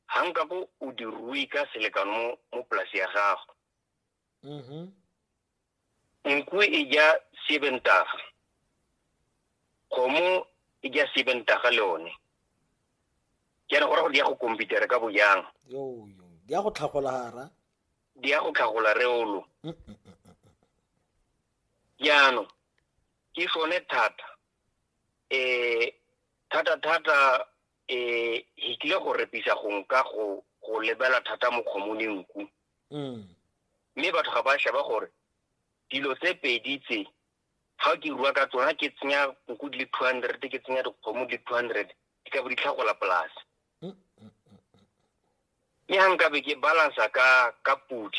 ga nka bo o di rui ka selekano mo mo polasi ya gago Mhm. nku e ja sebentaga kgomo e ja sebentaga le one jaana go ra go di ya go komputere ka bojang Yo, yo. Di a go tlhagola hara. di ya go tlhagola reolo Mm, mm, mm. jaanong ke sone thata um thata thata eh e kile go repisa go nka go go lebela thata mo kgomone nku mm. mme batho ga ba sheba gore dilo tse pedi tse ga ke rua ka tsona ke tsenya nku di le two hundred ke tsenya dikgomo di le two hundred di ka bo di tlhagola polase mm, mm, mme ga nkabe ke balansa ka ka podi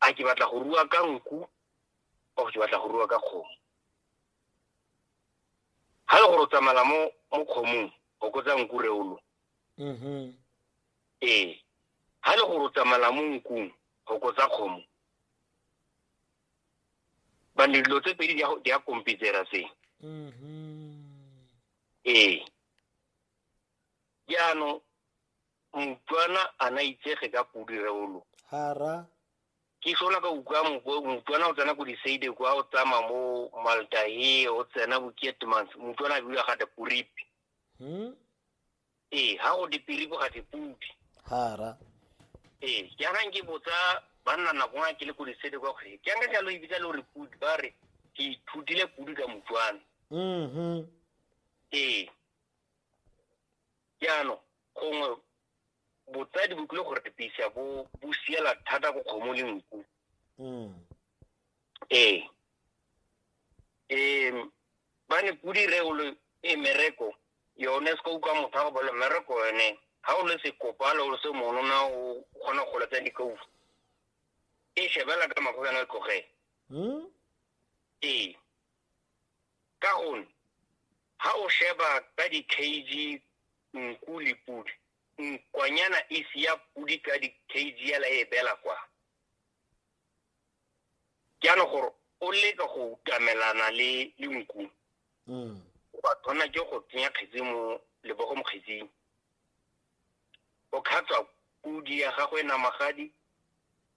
a ke batla go rua ka nku or ke batla go rua ka kgomo ga le gore o tsamala mo mo kgomong o kotsa nku reolo mm-hmm. ee ga le gore o tsamala mo nkung go kotsa kgomo bane dilo tse pedi di a kompitsera se mm-hmm. ee jaanong motswana a na itsege ka podi reolo hara ke sola ka utlwa motswana o tsena ko diseide kwa o tsama mo maldahe o tsena bo kietmans motswana a bula ga te poripi hmm? ee ga go dipiripo ga dipudi hara ee jaanang ke botsa banna nako nga ke le ko diseide kwa gore ke anka jalo ebitsa le gore pudi ba re ke ithutile pudi ka motswana mm-hmm. ee jaanong gongwe botsadi bo tlile go repisa bo bo siela thata ko kgomo le nku mm. ee um ba ne pudi re o le e mereko yone se ka utlwa motho a go bolo mereko yone ga o le sekopalo o le se monona o kgona go letsa dikaufu e shebela ka mago kana tlogela hmm? ee ka gonne ha o sheba ka di-kg nku le podi nkwanyana e sia podi ka di-kg ela e bela kwa jaanong gore o leka go utamelana le le nku mm. o ba tshwana ke go tsenya kgetsi mo lebogo mo kgetsing o khatswa podi ya gago e namagadi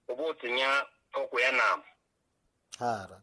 o bo o tsenya thoko ya nama hara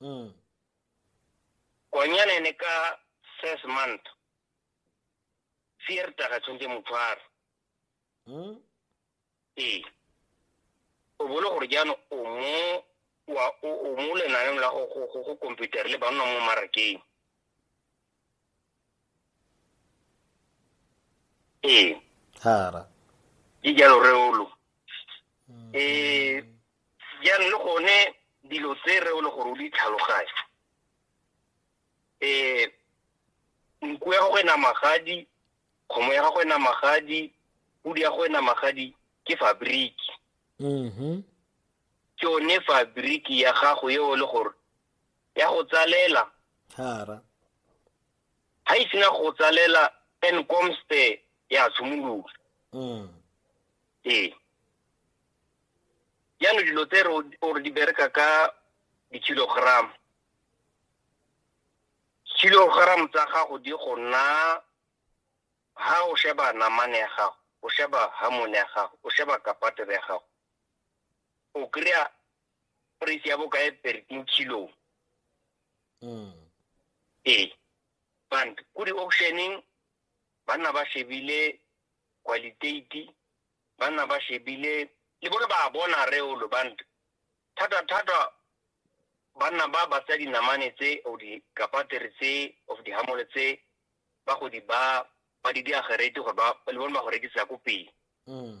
Mm. Konyana ne ka first month. Fierta ga tshwantse motshwaro. Mm. Ee. O bolo gore jaanong o mo wa o mo lenaneng la go go go computer le ba nna mo marakeng. ee hara ke jalo reolo um jaanong le gone dilo tse reolo gore o di tlhaloganye um nku ya gago e na magadi kgomo ya gago e na magadi pudi ya gago e na magadi ke fabriki mhm ke yone fabriki ya gago eo le gore ya go tsalela hara ha e sena go tsalela and comes the ya tshimolola mm ee yana dilo tse re di bereka ka di-kilogram kilogram tsa gago di go nna ha o sheba namane ya gago o sheba hamone ya gago o sheba kapatele ya gago o kry-a price ya bokae thirteen kilo mm. ee band ko di-auctioneng banna ba shebile qualitati banna ba shebile le bone ba bona reolo band thata-thata banna ba ba tsa dinamane tse o dikapatere tse of dihamole tse ba go di ba ba di diagerete gore le bone ba go rekisa ko pele mm.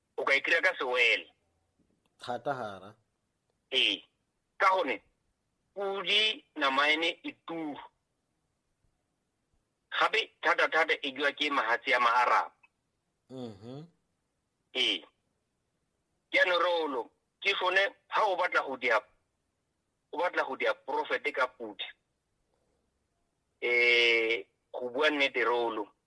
o ka e kry-a ka sewele thata gara ee ka gone pudi nama ene e turu gape thata-thata e jwa ke mahatsi a maaraba mm-hmm. ee jaanong reolo ke sone ga o batla go dia o batla go dia profete ka pudi um go bua nnete reolo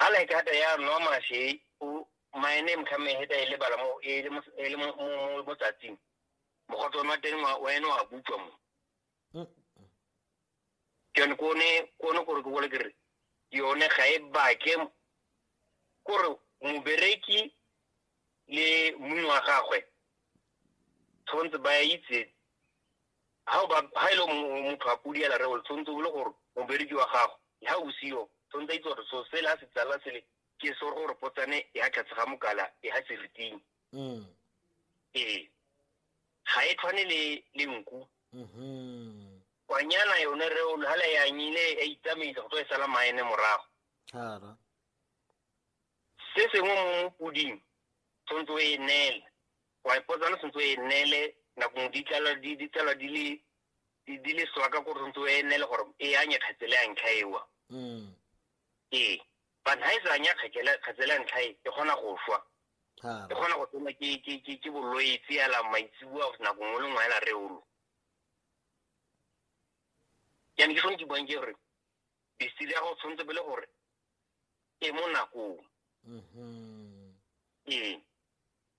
a like hata ya nwa mashe o my name ka me heta ile bala mo e le mo e le mo mo mo tsatsing mo go tsona teng wa wena wa butswa mo ke ne ko ne ko ne gore ke bole ke re yone ga e bake gore mobereki le mongwe wa gagwe tshwanetse ba itse ha o ba ha ile mo motho a pudi ela re o tsontse o le gore mo bereki wa gago ha o sio tsontse itse gore so se la se tsala sele ke so gore potsane e ha tlhatse ga mokala e ha seriting mm e ha e tshwane le le nku mhm kwanyana yone re o hala ya nyile e itsamisa go tlo e sala maene morago hara se sengwe mo puding tsontse o e nela wa ipotsa le sentse o e neele nako ngwe ditlalwa di ditlalwa di le di di le soa ka gore sentse o e neele gore e anye kgetsele ya ntlha ewa Mm. ee but ha e sa anya kgetsele kgetsele ya ntlha e e kgona go swa Ha. e kgona go tsena ke ke ke ke bolwetse ya la maitsibua nako ngwe le ngwe ya la reolo yana ke sone ke buang ke gore besiri ya go tshwanetse pele gore e mo nakong Mhm. ee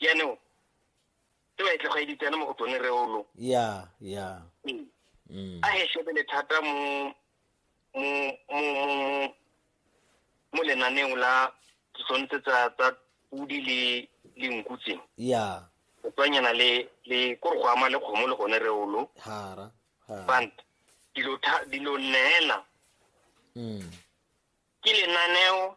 jaanong e ba e tlogeditsene mo go tsone reolo ya ya mm. Mm. a he shebele thata mo mo lenaneng la tshwanetse tsa tsa pudi le le nku tse ya o tswanyana le le kore go ama le kgomo le gone reolo hara bant dilo dilo neela mm. ke lenaneo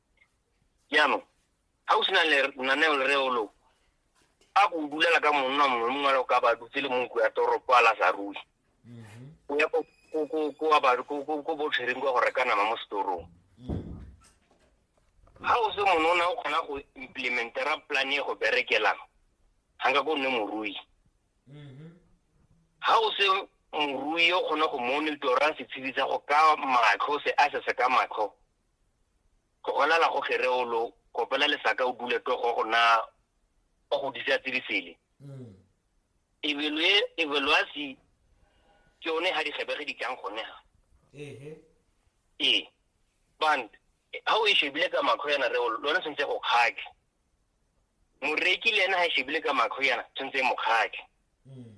jaanong ga o sena lenaneo le reolong a ko dulela ka monna mongwe le mongwe le ka ba dutse le mongko ya toropo a la sa rui o ya ko botshwereng kwa go reka nama mo setorong ga o se monona o kgona go implementera plan e go berekelang ga nka ko nne morui ga o se morui o kgona go monitora setshedi sa go ka matlho se a se se ka matlho go gonala go kgere o lo kopela lesaka o dule to go gona o go disa tse di sele mm. ebelwe evaluasi ke one ha di gebege di tlang gone ha ehe ee band ha o e shebile ka makho yana re lona sentse go khake moreki le ena ha e shebile ka makho yana sentse mo khake mm.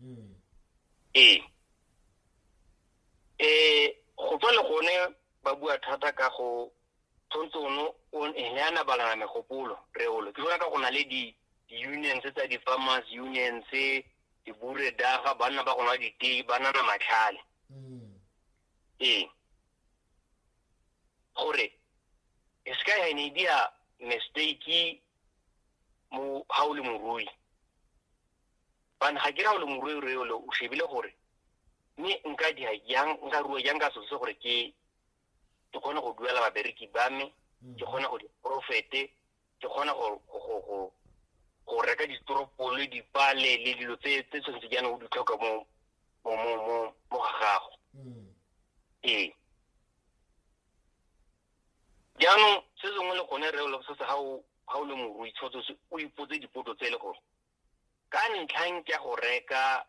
hmm. ee um go tswa le gone ba bua thata ka go tshwanetse ono ne a nabalana megopolo reolo ke bona ka go na le di-unions tsa di-farmers unions diburedaga banna ba gona ditei ba nana matlhale hmm. ee gore e se ka ya ne dia mistake mo ha o le morui bane ga ke ra ole morwerwe ole o shebile gore mme nka dia jang nka rua jang ka selo se gore ke ke kgone go duela babereki ba me mm. ke kgone go diprofete ke kgone go reka ditoropole dipale le dilo tse tshwanetse jaanong o di tlhoka mo ga gago mm. ee jaanong se sengwe le gone re se se ga o le morui tshwanetse o ipotse dipotso tse e le gore ka ntlhang ke go reka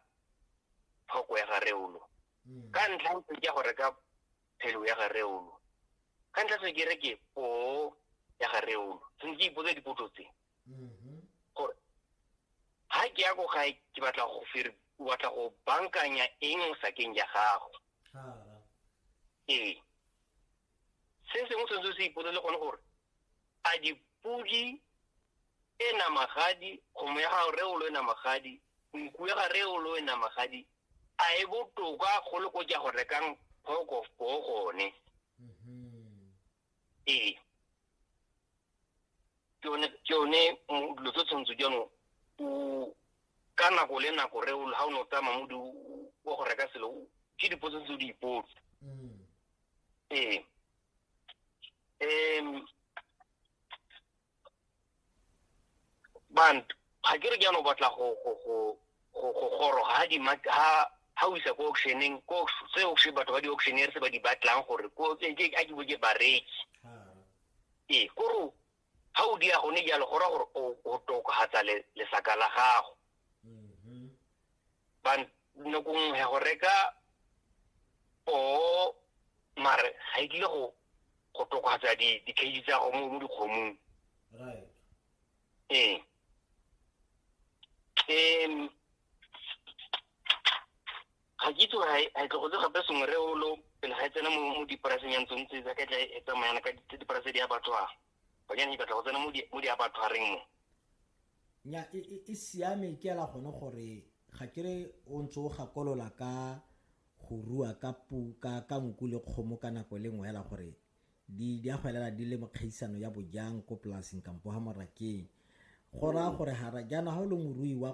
tlhoko ya ga reolo hmm. ka ntlhang ke go reka phelo ya ga reolo ka ntlha se ke re ke po ya ga reolo se ke ipotsa dipotso tse mm-hmm. gore ha ke ya go gae ke batla go fir batla go bankanya eng sakeng ya gago ee se sengwe se se se ipolele gone gore a dipodi e namagadi kgomo ya gago reolo e namagadi nku ya ga reolo e namagadi a e botoka go le ko ja go rekang pork of boo gone ee ke one ke one mm, dilo tse tshwanetse jaanong o ka nako le nako re o- ha o ne o tsamaya mo di wa go reka selo o- ke dipotso tse o di ipotse Mm. ee um bantu ga ke re ke ano batla go go go go go goroga ha di ha ha o isa ko auctioneng ko se auction batho ba di auctioneer se ba di batlang gore ko ke ke a ke bo ke bareki ee koro ha o dia gone jalo go ra gore o tokagatsa lesaka la gago nako nngwe ya go reka poo mare ga e tlile go go tokafatsa di-cage tsa go mo dikgomong ee um ga ke itse gore ga tlogotse gape sengwe re olo pele ga e tsena mo dipolaseng ya ntsong tse ka tla e tsamayana ka dipolase di a batho a banyane di batla go tsena mo di a batho a reng mo nya e, e, e siame ke ela gone gore ga kere o ntse o gakolola ka go rua ka pu ka ka nku le kgomo ka nako le nngwe ela gore di di a go elela di le mokgaisano ya bojang ko polaseng kampo ha morakeng go raya gore ga jaana ga o le morui wa